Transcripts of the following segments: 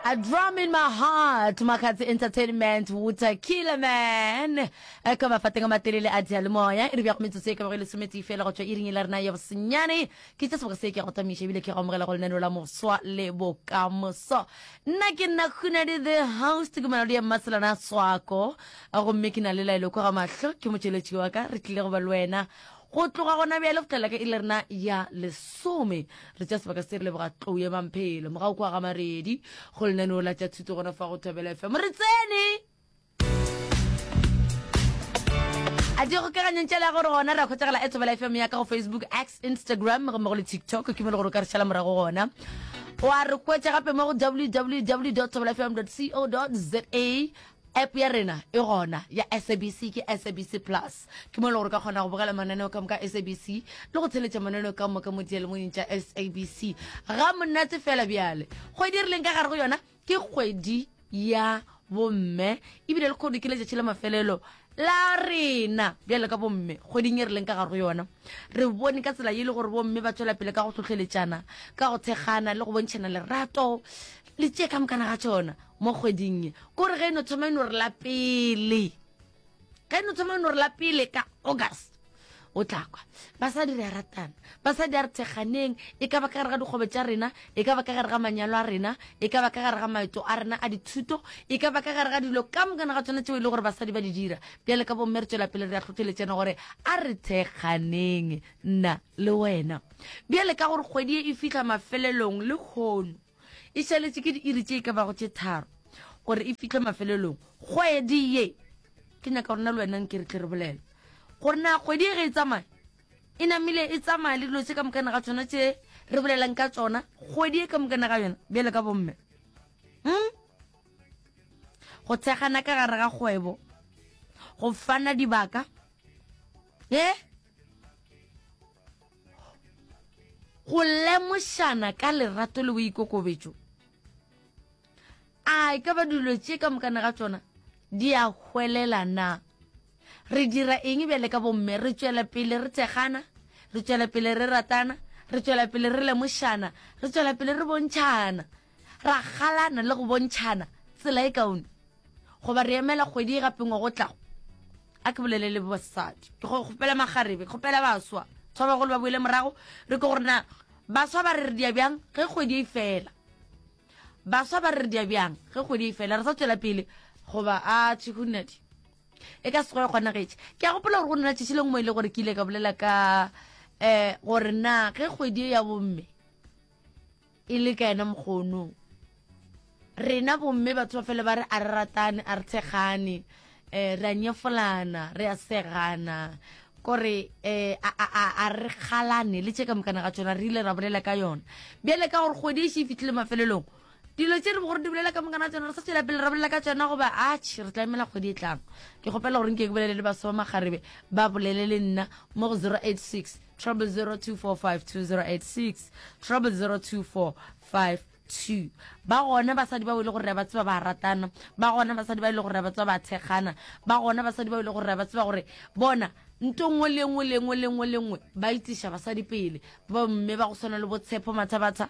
A drum in my heart makgatse entertainment water killer man Eh, ka mafateng a matelele a dialemoya e re bjago metsotso e ka bago e lesometee fela go tšwa iring e la rena ya bosenyane ke tša seboga se ke go tamiša ebile ke go amogela go lenaneo la moswa le bokamoso nna ke nna khunadi the house ke malodi ya mmaselana swako gomme ke na le laelo kwa ga mahlo ke motšweletši wa ka re tlile go ba le wena Go tloga gona bjale go tlela ka ile rena ya lesome re tša sebaka se re leboga tlou ya mamphelo moga o kwa ga maredi go lenaneo la tša thuto gona fa go thobela fm re tsene a di kgokaganyeng tšela gore gona ra kgotšagela e thobela fm ya ka go facebook x instagram gomme go le tiktok ke mo le gore o ka re šala morago gona wa re kwetša gape mo go www thobela fm co za App ya rena e gona ya SABC ke SABC Plus. Ke mo e le gore ka kgona go bogela mananeo ka moka SABC le go tsheletša mananeo ka moka mo dialemoyeng tša SABC. Ga monate fela bjale. Kgwedi e re leng ka gare go yona ke kgwedi ya bomme ebile le kgono ke letšatši la mafelelo la rena bjale ka bomme kgweding e re leng ka gare go yona re bone ka tsela e le gore bomme ba tswela pele ka go tlhotlheletšana ka go thekgana le go bontšhana lerato le tše ka mokana ga tšona mo kgweding ye kore ge e no thoma e no re la pele ge e no thoma e no re la pele ka august o tla kwa basadi re a ratana basadi a re thekganeng e ka ba ka gare ga dikgobe tša rena e ka ba ka gare ga manyalo a rena e ka ba ka gare ga maeto a rena a dithuto e ka ba ka gare ga dilo ka mokana ga tsona tseo e le gore basadi ba di dira bjale ka bomme re tswela pele re a tlhotlheletsena gore a re thekganeng nna le wena bjale ka gore kgwedi e e fitlha mafelelong le kgono E šaletše ke diiri tše e ka bago tše tharo gore e fihle mafelelong. Kgwedi ye, ke nyaka gore na le wenang ke re tle re bolele gore na kgwedi ye ge e tsamaya e namile e tsamaya le dilo tše ka mokane ga tsona tše re bolelang ka tsona kgwedi ye ka mokane ga yona bjale ka bomme hmm? go thekgana ka gare ga kgwebo go fana dibaka e eh? go lemošana ka lerato le boikokobetšo a e ka ba dilo tše ka mokane ga tšona di a hwelela na re dira eng bjale ka bomme re tšwela pele re thekgana re tšwela pele re ratana re tšwela pele re lemošana re tšwela pele re bontšhana Ra galana le go bontšhana tsela e kaone goba re emela kgwedi e gapengwa go tlago. A ke bolele le basadi. Ke go kgopela magarebe, ke kgopela baswa tshwa bagolo ba boele morago, re ke gore na baswa ba re re dia bjang ge kgwedi e fela. Baswa ba re re dia bjang ge kgwedi e fela re sa tšwela pele goba a tšhe go nadi. E ka se go ya kgonagetše. Ke a gopola gore go nna tšešile ngwe ile gore ke ile ka bolela ka um gore na ge kgwedi e ya bomme. e le ka yena mokgono rena bomme batho ba fele ba re a re ratane a re tshegane um re a nyefolana re a segana kore um a re kgalane le tše ka mokana ga tsona re ile ra bolela ka yona bjale ka gore kgwedi e še e fitlhile mafelelong dilo tse re bo gore di bolela ka mokana tsona re sa tswela pele re bolela ka tsona goba atšhe re tla emela kgwedi e tlang ke kgopela gore nke ke bolele le baso ba magarebe ba bolele le nna mo go zero eight six trouble 02452086 trouble 0245 ba gona basadi ba ile gore ba tseba ba ratana ba gona basadi ba ile gore ba tseba ba thekgana ba gona basadi ba ile gore ba tseba gore bona nto nngwe le nngwe le nngwe le nngwe le nngwe ba itiša basadi pele bomme ba go tshwana le botshepo mathabatha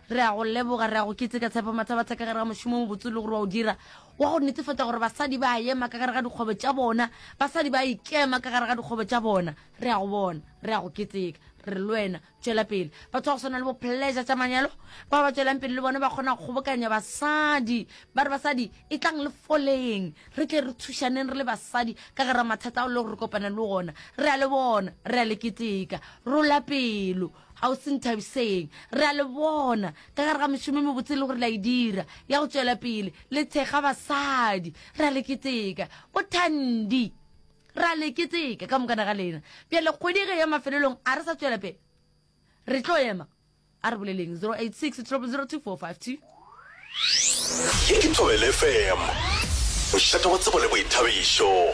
Re a go leboga, re a go keteka, Tshepo Mathabatha, ka gare ga mošomo o mobotse e le gore wa o dira, wa go netefatša gore basadi ba a ema ka gare ga dikgwebo tša bona, basadi ba a ikema ka gare ga dikgwebo tša bona. Re a go bona, re a go keteka, re re le wena, tšwela pele. Batho ba go swana le bo Pleasure tša Manyalo, bao ba tšwelang pele le bona, ba kgona go kgobokanya basadi, ba re, Basadi, etlang le foleng, re tle re thušaneng re le basadi ka gare ga mathata ao e le gore re kopana le ona. Re a le bona, re a le keteka. Rola pelo. Kgauswi Nthabiseng, re a le bona ka gare ga mešomo e mebotse e le gore le a e dira ya go tšwela pele le thekga basadi. Re a le keteka. Bothandi, re a le keteka ka mokana ga lena. Bjale kgwedi ge ya mafelelong a re sa tšwela pele re tlo ema. A re boleleng 086 0002452. Ye ke Thobela FM, mošate wa tsebo le boithabišo.